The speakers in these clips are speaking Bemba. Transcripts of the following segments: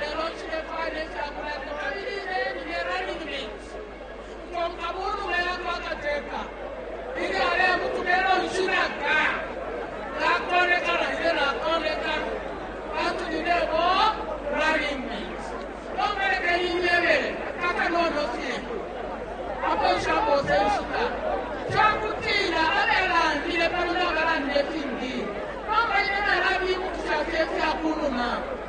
Lelo cibe fwaya ne fya kulanda kabili beni ne running mate ukukonka mu numa ya kwa kateka ili alebutuka elo nshilaka nakoneka na ine nakoneka pantu ninebo running mate lombeleke inyebele kakanono fye apo nshaposa enshita cakutila alelandile pano nabalandile fingi nomba ine nalabibutusha fye fya kunuma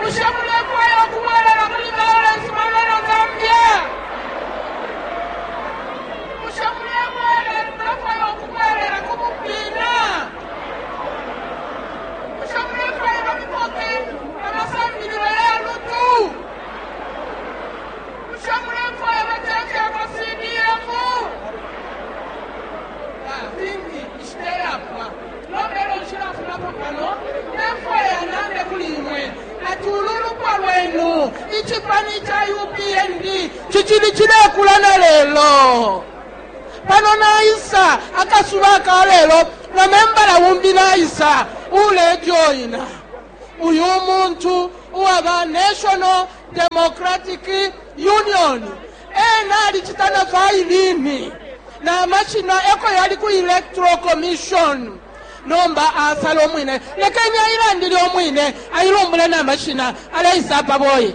Bushe mulefwaya ukubwelela muli Lawrence Moreno Zambia? Bushe mulefwaya ukubwelela ku bupiina? Bushe mulefwaya bamupoke amasambililo ya lutu? Bushe mulefwaya bacanje ama CDF? Fingi ishiteyapwa. Nomba elyo nshilafumapo pano, ndefwaya nande kuli imwe ati ulu lupwa lwenu, icipani ca UPND, cicili cilekula na lelo. Pano naisa akasuba aka lelo, na membala umbi naisa ulejoina uyu muntu uwa ba National Democratic Union. Ena alicita na vailini, na mashina eko yali ku Electoral Commission. Nomba asala umwine, lekeni ailandile umwine, ailumbule na mashina, aleisa apa boyi.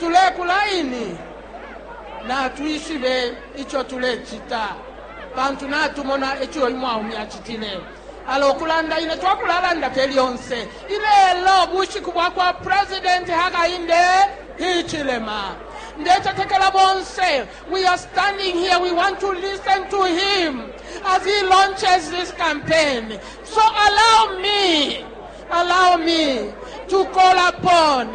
Tulekula ini, natwishibe ico tulecita, pantu natumona ico uyu mwaume acitile. Ala ukulanda ine twakulalanda fye lyonse. Ilelo bushiku bwa kwa President Hakainde Hichilema. Ndecetekela bonse, we are standing here, we want to listen to him as he launches this campaign. So allow me, allow me to call upon